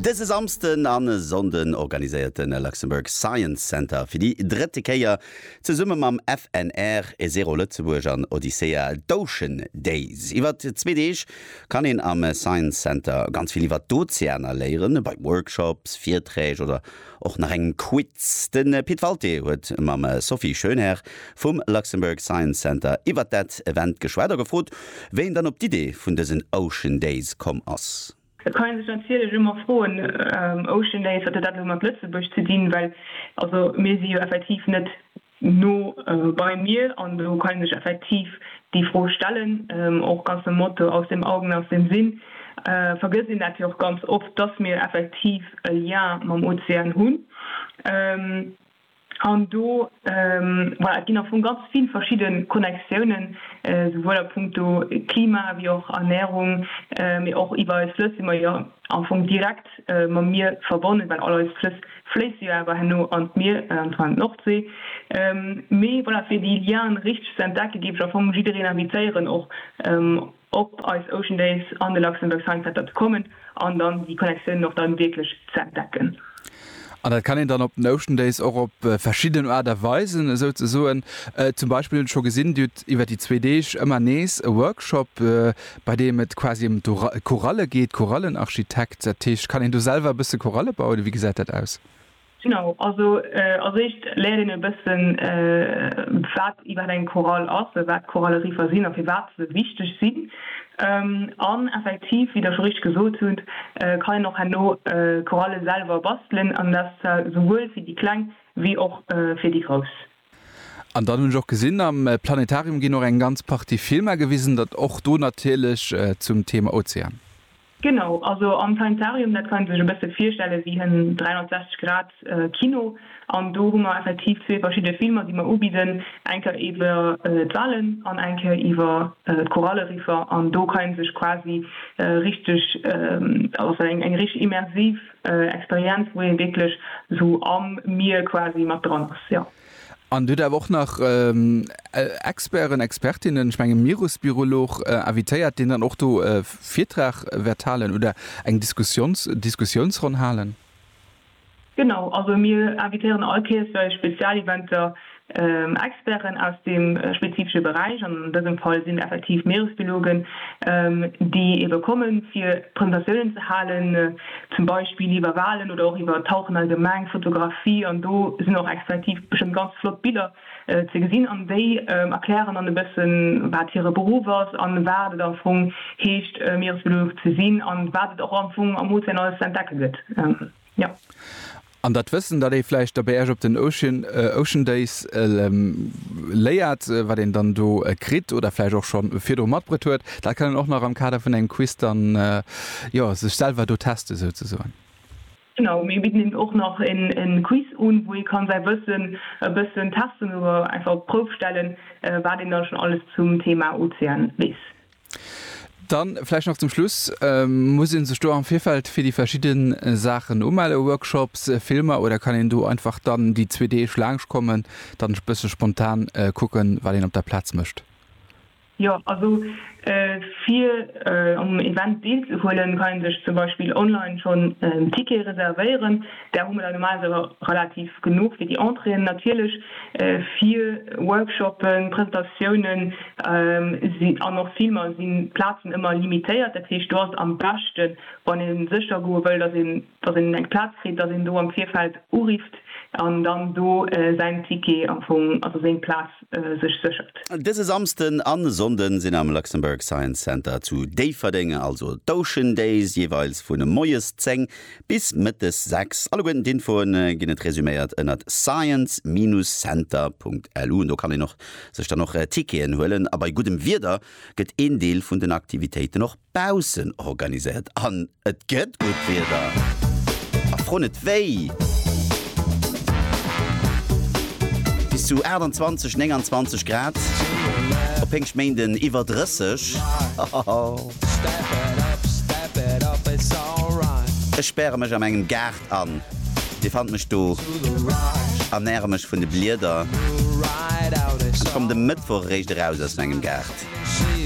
Dëse Samsden a Sonnden organiséiert de Luxembourg Science Center fir déi drëtte Kéier zesumme mam FNR, Zero Lëtzebuerg an Odyssea d'Ocean Days. Iwwer zwee Deeg kann een am Science Center ganz vill iwwer d'Ozeaner léieren, bei Workshops, Virträg oder Och nach en Quiz. De Pit Walté huet mam Sophie Schoenherr vum Luxembourg Science Center iwwert dat Event geschwat a gefrot, wéi een dann op d'Idee vun dësen Ocean Days komm ass. Et kann ee sech natierlech ëmmer froen, Ocean Days, wat huet dat elo mat Lëtzebuerg ze dinn? Well also mir si jo effektiv net no bei mir an do kann een sech effektiv déi Fro stellen, och ganz nom Motto aus dem Augen, aus dem Sinn, vergësst een dat jo och ganz oft, dass mir effektiv e Lien mam Ozean hunn an do, voilà, et ginn am Fong ganz vill verschidde Connectiounen, souwuel a punkto Klima wéi och Ernährung, mee och iwwer eis Flëss si mer jo am Fong direkt mam Mier verbonnen, well all eis Flëss fléisst se jo awer herno an d'Mier, an zwar an d'Nordsee. Mee voilà, fir déi Lianen richteg ze entdecke géif ech am Fong jiddereen invitéieren och op eis Ocean Days an de Luxembourg Science Center ze kommen an dann déi Connectiounen och dann wierklech ze entdecken. An dat kann een dann op den Ocean Days och op verschidden Aart a Weisen esou ze soen. Zum Beispill hunn ech scho gesinn, Dir hutt iwwer déi zwee Deeg ëmmer nees e Workshop, bei deem et quasi ëm d'Choralle geet, Chorallenarchitekt, dat heescht kann een do selwer e bësse Choralle bauen oder wéi gesäit dat aus? Genau, also als éischt léiert een e bëssen wat iwwerhaapt eng Chorale ass, wat d'Choralleriffer sinn a firwat se wichteg sinn an effektiv, wéi Der scho richteg gesot hutt, kann een och herno Choralle selwer bastelen an dat souwuel fir déi Kleng wéi och fir déi Grouss. An dann hunn ech och gesinn, am Planetarium ginn och eng ganz Partie Filmer gewisen, dat och do natierlech zum Thema Ozean. Genau, also am Planetarium, dat kann ee sech e bësse virstelle wéi en 360 Grad Kino. An do hu mer effektiv zwee verschidde Filmer, déi mer ubidden, eng Kéier iwwer d'Walen an eng Kéier iwwer d'Koralleriffer. An do kann ee sech quasi richteg, also eng richteg immersiv Experienz wou een wierklech sou am Mier quasi mat dran ass jo. An hutt awer och nach Experten, Expertinnen, ech mengen Mierusbiolog invitéiert deen dann och do e Virtrag wäert halen oder eng Diskussions Diskussionsronn halen? Genau, also mir invitéieren all Kees bei Spezialeventer Experten aus deem spezifesche Beräich, an dësem Fall sinn effektiv Meeresbiologen, déi ebe komme fir Presentatiounen ze halen, zum Beispill iwwer Walen oder och iwwer Tauchen allgemeng, Fotografie, an do sinn och effektiv bestëmmt ganz flott Biller ze gesinn an déi erklären dann e bëssen, wat hire Beruff ass an wat et am Fong heescht, Meeresbiolog ze sinn an wat et och am Fong am Ozean alles ze entdecke gëtt. An dat Wëssen, dat ee vläicht da bei Iech op den Ocean, Ocean Days léiert, wat een dann do kritt oder vläicht och scho virdru matbruet huet, dat kann een och nach am Kader vun engem Quiz dann, jo, sech selwer do testen, souzesoen. Genau, mir bidden eben och nach e Quiz un, wou ee ka säi Wëssen e bëssen testen oder einfach op d'Prouf stellen, wat een da schonn alles zum Thema Ozean weess. Dann vläicht nach zum Schluss, Muss ee sech do am Virfeld fir déi verschidde Saachen umellen, Workshops, Filmer, oder kann een do einfach dann déi zwee Deeg laangschtkommen, dann e bësse spontan kucken, wat een op der Plaz mécht? Jo, also fir um Event deelzehuelen, kann ee sech zum Beispill online schonn en Ticket reservéieren. Där hu mer der normalerweis awer relativ genuch fir déi Entréeën. Natierlech fir Workshoppen, Presentatiounen an och Filmer sinn d'Plazen ëmmer limitéiert. Dat heescht, do ass et am beschten, wann ee sécher goe wëll, datt een datt een eng Plaz kritt, datt een do am Virfeld urifft an dann do säin Ticket am Fong, also seng Plaz sech séchert. Dëse Samsden a Sonnde sinn am Luxembourg Science Center zu Déifferdeng also d'Ocean Days, jeeweils vun moies 10 Bis mëttes 6. Alleguerten d'Infoen ginn et resuméiert ënnert science-center.lu. Do kann een och sech dann och Ticketen huelen. A bei guddem Wieder gëtt een Deel vun den Aktivitéiten och baussen organiséiert. An et gëtt gutt Wieder! A fro net wéi! Bis zu 28, 29 Grad, op Péngschtméinden iwwer 30. Ech späre mech am engem Gaart an, Dir fannt mech do, ernäre mech vun de Blieder an komme de Mëttwoch eréischt eraus aus mengem Gaart.